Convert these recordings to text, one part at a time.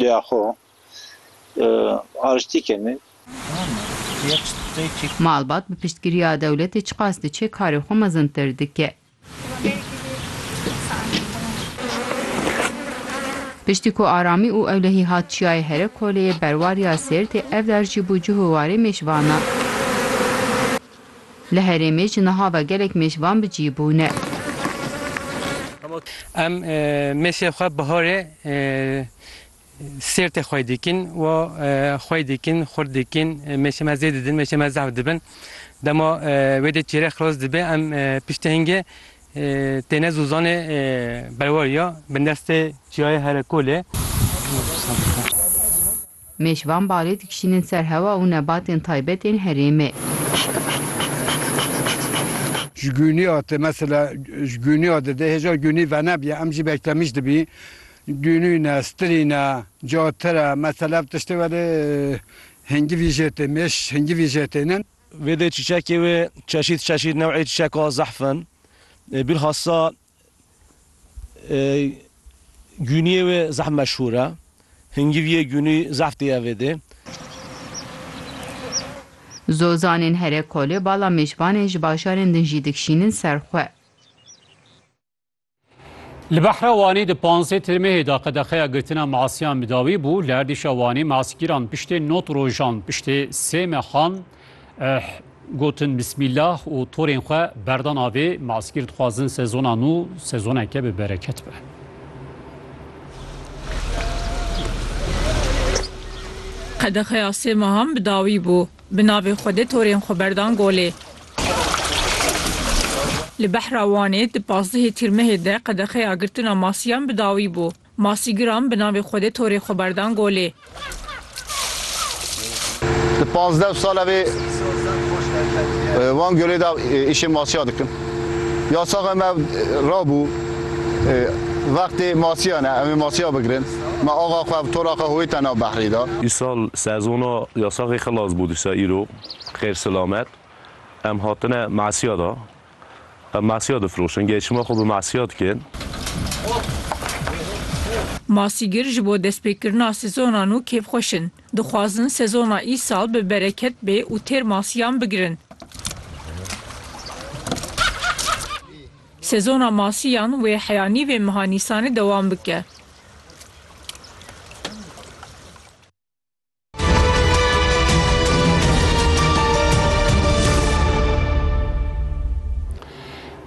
Rêya xwe ariştî kenê. Malbat bi piştgiriya dewletê çiqas diçe karê xwe mezintir dike. Piştî ku aramî û ewlehî hat çiyayê here koleyê berwar ya Sêrtê ev dar jî bû cih û warê mêşvanan. Li herêmê ji niha ve gelek mêş van bi cî bûne. Em mêşê xwe biharê sêrtê xwe dikin û xwe dikin, xurt dikin, mêşê me zêde didin, mêşê me zehf dibin. Dema wê dê çêrek xilas dibe em piştê hingê têne zûzanê berwariya bindestê çiyayê Herekolê. Mêş van barê dikişînin ser hewa û nebatên taybet ên herêmê. Ji gûniya te mesela ji gûniya de dê hêja gûnî venebîya em jî bektemîj dibî gûnîne stirîne ca tire mesela ev tiştê welê hingivî jê tê mêş hingivî jê tênin. Vê dê çîçekê wê çeşît çeşît new'ê çîçeka zehf in. Bîlhassa Gûniyê wê zehf meşhûr e. Hingiviyê gûnî zehf tê Evedê. Zozanên here kolê bala mêşvanên ji bajarên din jî dikşînin ser xwe. Li Behra Wanî di panzdeh Tirmehê de qedexeya girtina masiyan bi dawî bû. Li erdîşa Wanî masgîran piştê not rojan piştê sê mehan Eh, gotin Bismîllah û torên xwe berdan avê, maskîr dixwazin sezona nû sezoneke bi bereket be. Qedexeya sê mehan bi dawî bû. Bi navê Xwedê torên xwe berdan golê. Li Behra Wanê di pazdehê Tîrmehê de qedexeya girtina masiyan bi dawî bû. Masî giram bi navê Xwedê torê xwe berdan golê. Di pazdeh sale vê wan gölê de îşê masîya dikim. Ya saxe me rabû vextê masîya ne, em ê masîya bigirin. Me axa xwe bi tora xwe hoyî te nav behrî de. Îsal sezona ya saxê xilas bû dîsa îro xêr silamet em hatine masîya de Em masîya difiroşin. Geşima xwe bi masîya dikin. Masîgir ji bo destpêkirina sezona nû kêfxweş in. Dixwazin sezona îsal bi bereket bê û têr masîyan bigirin. Sezona masîyan wê heya nîvê meha Nîsanê dewam bike.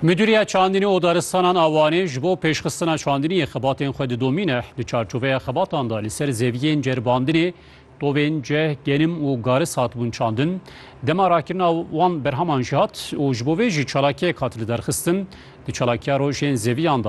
Müdiriya Çandînî û Daristanan a Wanê ji bo pêşxistina çandînî yê xebatên xwe didomîne. Di çarçoveya xebatan de li ser zeviyên ceribandinê tovên ceh, genim û garis hatibûn çandin. Dema rakirina wan berheman jî hat û ji bo vê jî çalakiyek hat li derxistin. Di çalakiya rojên zeviyan de